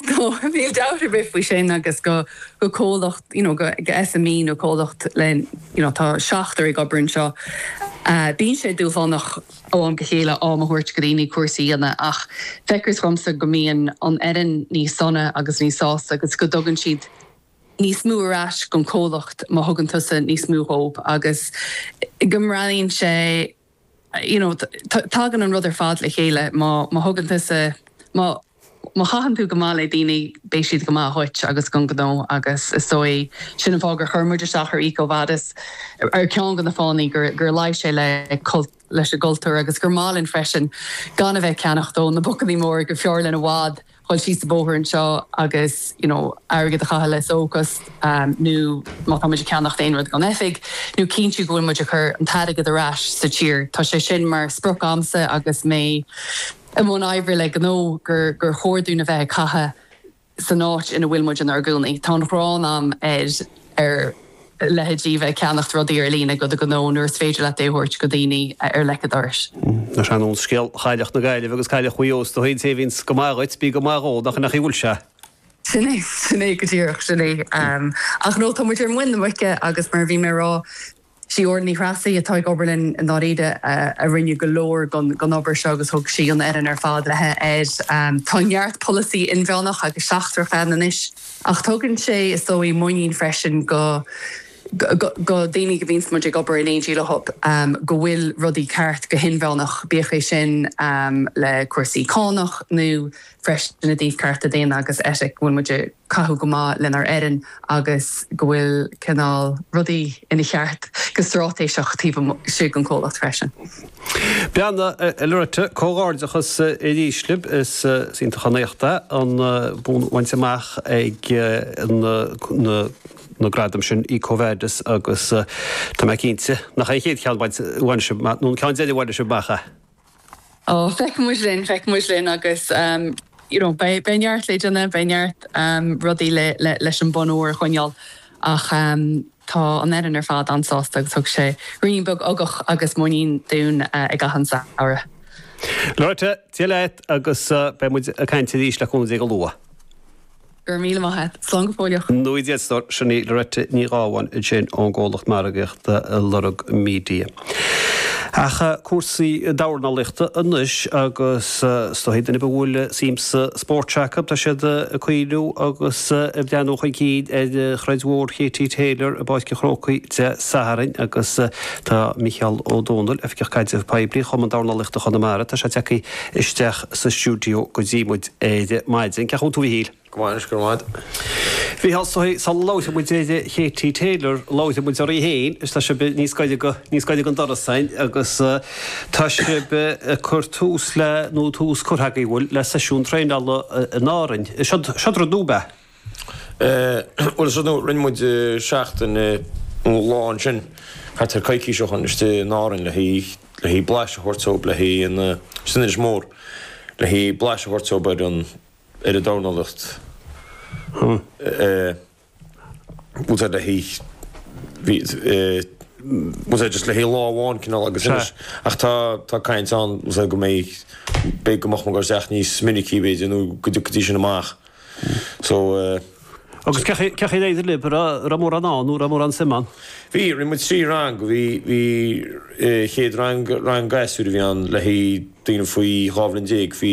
Go, níl dabht ar bith faoi sin agus go, go comhlacht, you know, go, go SME nó comhlacht le, you know, tá seachtar ag obair anseo, eh, bíonn sé dúshlánach ó am go chéile am a thabhairt go daoine cúrsaí a dhéanamh ach feictear dhomsa go mbíonn an fhoireann níos sona agus níos sásta agus go dtugann siad níos mó ar ais don chomhlacht má thugann tusa níos mó dhóibh agus go mbreathnaíonn sé you know, tagann an rud ar fad le chéile, má thugann tusa, má, má chaitheann tú go maith le daoine, beidh siad go maith dhuit agus gon ghnó, agus is dóigh sin an fáth gur chuir muid isteach ar EcoVadis, ar cheann de na fáthannaí, gur, gur luigh sé le cult, leis an gcultúr, agus gur maith linn freisin gan a bheith ceannacht ó na bocannaí móra gurbh fhearr linn i bhfad, dhul síos an bóthar anseo agus you know airgead a chaitheamh leis ó chás nó má tá muid ag ceannacht aon rud gon oifig nó cinntiú go bhfuil muid ag cur an t-airgead ar ais sa tír. Tá sé sin mar sprioc agamsa agus mé i mbun oibre le gnó gur gur chóir dúinn a bheith ag caitheamh san áit ina bhfuil muid inár gcónaí. Tá an ghráin a'm ar ar. leithéid a bheith ag ceannacht rudaí ar líne go do ghnó nuair is féidir leat é a thabhairt go daoine ar leic a dorais. Ach ar nós scéal Chailleach na Gaillimhe agus Cailleach Mhuigh Eó, is dóigh, an té a bhíonns go maith dhuit, bí go maith dhó, nach 'in a' chaoi a bhfuil sé? Sin é, sin é go díreach, sin é. Ach no, tá muid ar muin na muice agus mar a bhí mé a rá, sí Órla Ní Threasaigh atá ag obair linn i ndáiríre a rinne go leor gon gon obair seo agus thug sí an fhoireann ar fad léithi air. Tá neart polasaí inmheánach agus seachtrach ann anois. Ach tugann sé, is dóigh, muinín freisin go daoine go a bhíonns muid ag obair in éindí leothub go bhfuil rudaí ceart go hinmheánach, bíodh é sin le cúrsaí cánach nó freisin i dtaobh cearta daonna agus eitic, go bhfuil muid ag caitheamh go maith lenár fhoireann agus go bhfuil cineál rudaí ina cheart go stráitéiseach taobh istigh den comhlacht freisin. Bhuel a Loretta, comhghairdeachas arís libh. Is iontach an t-éacht é an bonn a bhaint amach ag na gradaim sin EcoVadis agus tá mé cinnte nach é an chéad cheann a bhain sibh amach, nó an ceann deiridh a bhain sibh amach é. Ó, feicfimid linn, feicfimid linn agus you know beidh neart leideanna, beidh neart rudaí leis an bonn óir a choinneáil Ach tá an fhoireann ar fad an-sásta agus thug sé ruainne beag ugach agus muinín dúinn i gcaitheamh an samhraidh. Loretta, Dia leat agus beidh muid ag caint arís le cúnamh Dé go luath. Go raibh míle maith a't. Slán go fóilleach. Ó Dia go deo stór. Sin í Loretta Ní Ghabháin ansin ón gcomhlacht margaíochta Lorg Media. Ach cúrsaí dornálaíochta anois, agus is dóigh daoine a bhfuil suim sa spóirt acu, tá siad ag cuimhneamh agus ag breathnú chun cinn ar throid mhór Katie Taylor i bPáirc an Chrócaigh Dé Sathairn agus tá Micheál Ó Domhnaill, Oifigeach Caidrimh Poiblí Chumann Dornálaíochta Chonamara, tá sé tagtha isteach sa stiúideo go dtí muid ar maidin. Cén chaoi a bhfuil tú, a Mhichíl? Go maith, anois, go raibh maith agat. Bhuel sula labhróidh muid ar Katie Taylor, labhróidh muid oraibh féin is tá sibh níos gaire, níos gaire don doras againn agus tá sibh ag cur tús le nó tús curtha agaibh bhfuil le seisiún traenála in Árainn. Siod rud nua, ab ea? Bhuel, is rud nua, rinne muid seachtain nó lá ansin thart ar coicís ó shin istigh in Árainn le haghaidh blaiseadh a thabhairt dóibh le haghaidh an, sin Inis Mór, le haghaidh blaiseadh a thabhairt dóibh ar an, ar an dornálacht bhfuil a fhios agat le haghaidh bhí, bhfuil a fhios agat, just le haghaidh lá amháin cineál agus anois ach tá tá caint ann, bhfuil a fhios agat, go mbeidh beidh go mbeadh muid ag goil isteach níos minicí b'fhéidir nó go dtí go dtiocfaidís sin amach so Agus cén chaoi, cén chaoi ar éirigh lib raibh raibh mórán ann nó raibh mórán suim ann? Bhí, rinne muid trí rang, bhí bhí chéad rang rang gasúir a bhí ann le haghaidh daoine faoi dhá bhliain déag, bhí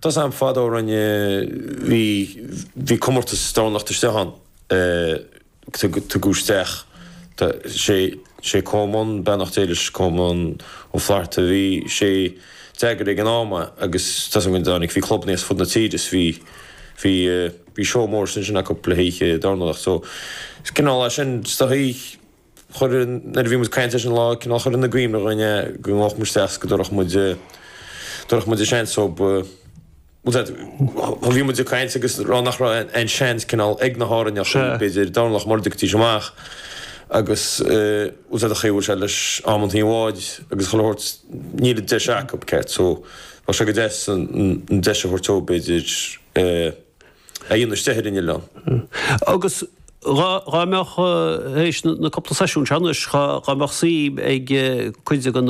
Tá a fhios agam fadó rinne, bhí, bhí comórtas dornálacht istigh ann, tugadh isteach, tá sé, sé Colmán, beannacht Dé leis, Colmán Ó Flatharta, bhí sé, d'eagair ag an am é agus tá a fhios agam go dtáinig, bhí clubanna as fud na tíre is bhí, bhí, bhí seó mór ansin acu le hoíche dornálacht so is cineál é sin, is dóigh. Chuir, nuair a bhí muid ag caint leis an lá, cineál chuir sé i gcuimhne dhúinn é, go ngabhadh muid isteach 's go dtabharfadh muid, dtabharfadh muid an seans dóibh, bhfuil a fhios agat, bhí muid ag caint agus ag rá nach raibh aon seans cineál ag na hÁrainneachaí, b'fhéidir dornálacht mura dtiocfaidís amach agus bhfuil a fhios agat an chaoi a bhfuil sé leis amanntaí an bháid agus chuile shórt níl an deis acub, ceart so, bheadh sé go deas an deis a thabhairt dóibh b'fhéidir eh. a dhéanamh istigh ar an oileán. Agus dhá mbeadh, tar éis na cúpla seisiún seo anois, dhá mbeadh suim ag cuid den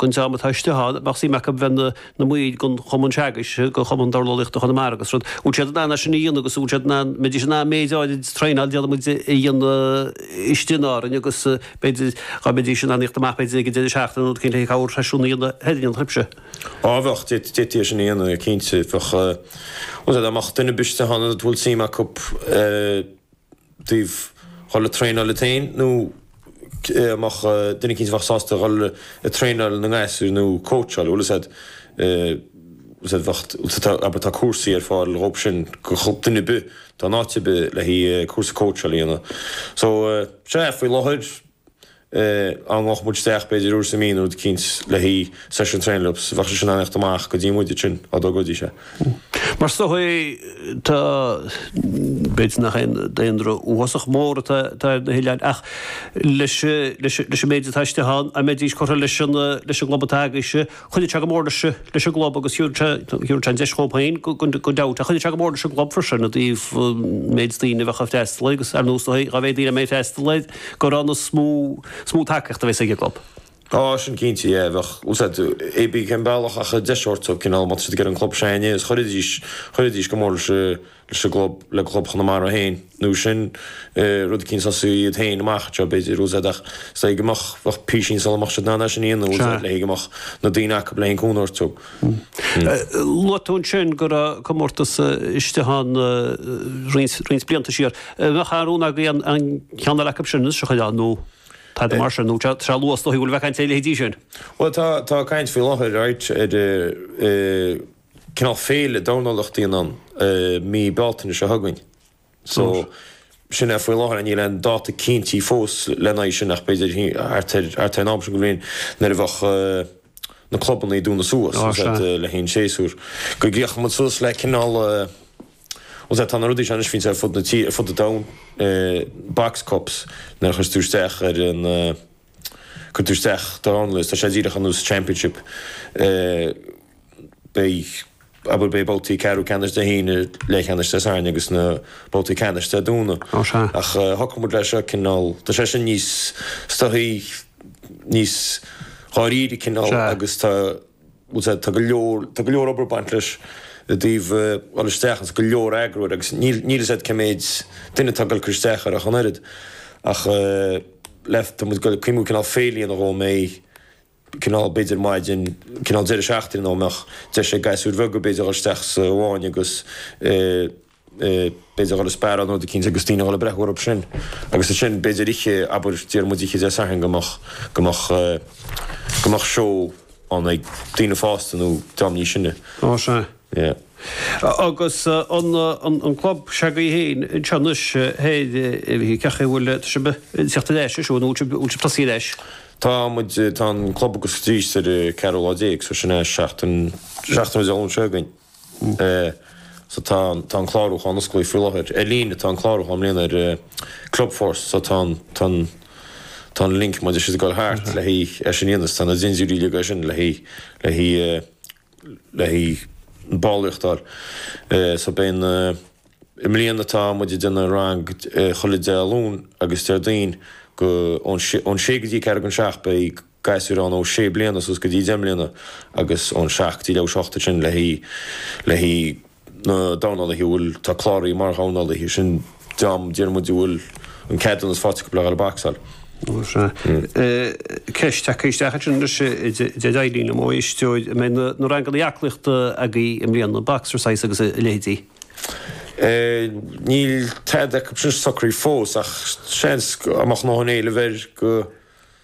dream atá istigh ann, bheadh suim acu bheith ina mbaill den chumann seo agaibhse, den chumann dornálaíochta Chonamara agus rud, an bhfuil siad in ann é sin a dhéanamh agus an bhfuil siad in ann, mbeidís in ann méid áirid de traenáil déarfaidh muid a dhéanamh istigh in Árainn agus b'fhéidir, dhá mbeidís in ann a thíocht amach b'fhéidir ag an deireadh seachtaine nó rud éigin, le corrsheisiún a dhéanamh a dhéanfadh an trip sin? Á bheadh d'fhéadfaí, d'fhéadfaí é sin a dhéanamh, cinnte, bheadh, bhfuil a fhios agat, dhá mbeadh duine ar bith istigh ann a bhfuil suim acu a dhul ag traenáil iad féin, nó dhá mbeadh duine cinnte bheadh sásta a dhul ag traenáil na ngasúir nó cóitseáil, bhfuil a fhios agat, bheadh, tá, abair, tá cúrsaí ar fáil dhóibh sin, do dhuine ar bith atá in áit ar bith le cúrsa cóitseáil a dhéanamh. So, sea, faoi láthair, dá ngabhadh muid isteach b'fhéidir uair sa mí nó rud eicínt le haghaidh seisiún traenáil leob is bheadh siad sin in ann a thíocht amach go dtí muide ansin, dá dtogróidís é. Mar is dóichí tá, b'fhéidir nach aon daonra uafásach mór atá ar na hoileáin, ach leis an méid atá istigh ann, an mbeidís curtha leis an gclub atá agaibhse? Chuideodh sé go mór leis an gclub agus thabharfadh sé an deis dhóib féin gan dabht, ach chuideodh sé go mór leis an gclub freisin i dtaobh an méid daoine a bheadh ag freastal air agus ar nós dá mhéad daoine a mbeidh ag freastal air gura ann is mó is mó tacaíocht a bheas ag an gclub. Tá sin cinnte, yeah, bheadh, agus eh, pé bí cén bealach ach deis a thabhairt dóibh cineál má tá siad ag iarraidh an club seo againne is chuirfidís, chuirfidís go mór leis an. leis an gclub, le Club Chonamara féin, nó sin rud eicínt a thosú iad féin amach anseo, b'fhéidir, agus, ach is dóigh go mbeadh, bheadh písín sul a mbeadh siad in ann é sin a dhéanamh, agus, le haghaidh go mbeadh na daoine acub le haghaidh an cúnamh a thabhairt dóibh. Luaigh tú ansin go raibh comórtas istigh ann roinnt, roinnt blianta siar. An mbeadh aon rún agaibh an, an ceann eile acub sin a shocrú nó tada mar sin, nó tá, tá sé luath is dóigh go fóill a bheith ag caint ar a leithéidí sin? Bhuel tá, tá caint faoi láthair, right, ar eh. cineál féile dornálaíochta a dhéanamh ann i mí Bealtaine seo chugainn. So, sin é faoi láthair. Níl aon dáta cinntithe fós lena aghaidh sin ach b'fhéidir thart ar thart ar an am seo de bhliain nuair a bheadh na clubanna ag dúnadh suas, Á, sea. le haghaidh an séasúr. Go gcríochnódh muid suas le cineál Bhuel, sea, tá na rudaí seo anois fite ar fud na tíre, ar fud an domhain, eh box cups, nuair a chuireas tú isteach ar an, cuireann tú isteach dornálaí is tá sé díreach ar nós Championship beidh abair beidh babhtaí ceathrú ceannais Dé hAoine leathcheannais Dé Sathairn agus na babhtaí ceannais Dé Domhnaigh Ó sea. ach shocraigh muid leis seo cineál tá sé sin níos is dóichí níos dáiríre cineál Sea. agus tá Sea, tá go leor, tá go leor obair ag baint leis i dtaobh dhul isteach agus go leor eagrú air agus níl, níl 'fhios a'd cé méid duine atá ag dul isteach air ach an oiread ach le, tá muid ag cuimhniú cineál féile a dhéanamh dhó, mbeidh cineál, b'fhéidir maidin, cineál deireadh seachtaine nó mbeadh deis ag gasúir bheaga b'fhéidir dhul isteach sa bhfáinne agus eh. b'fhéidir dhul ag sparáil nó rud eicínt agus daoine a dhul ag breathnú orthub sin agus ansin b'fhéidir oíche, abair déarfadh muid oíche Dé Sathairn go mbeadh, go mbeadh, go mbeadh seó ann ag daoine fásta nó dream níos sine. Ó sea. Yeah. Agus an, an, an club seo agaibh fhéin anseo anois, thoir, cach a' bhfuil sibh ag teacht ar ais ansin, an bhfuil sibh, bhfuil sibh tosaithe ar ais? Tá muid, tá an club ag oscailt arís ar an gceathrú lá déag so sin é seachtain, seachtain Dé Luain seo chugainn. so tá an tá an clárúchán osclaí faoi láthair ar líne tá an clárúchán i mbliana ar Clubforce so tá an tá an tá an link beidh sé ag goil thart le haghaidh é sin a dhéanamh tá na dintiúirí uilig ansin le haghaidh le haghaidh le haghaidh ballraíocht a fháil so beidh na i mbliana tá muid ag déanamh rang chuile Dé Luain agus Déardaoin ó ón sé ón sé go dtí ceathrú chun a seacht beidh gasúir ann ó sé bliana suas go dtí deich mbliana agus ón seacht go dtí leath tar éis a hocht ansin le haghaidh le haghaidh na dornálaithe a bhfuil tá cláraithe mar dhornálaithe sin an dream déarfaidh muid a bhfuil an ceadúnas faighte acu le dhul ag bacsáil. Is é ceist tagtha isteach ansin leis deir Eileen an mbeidh aisteoir an mbeidh na ranganna aclaíochta agaibh i mbliana boxercise agus a leithéidí? Níl tada acu sin socraithe fós ach seans go amach má tá an t-éileamh air go.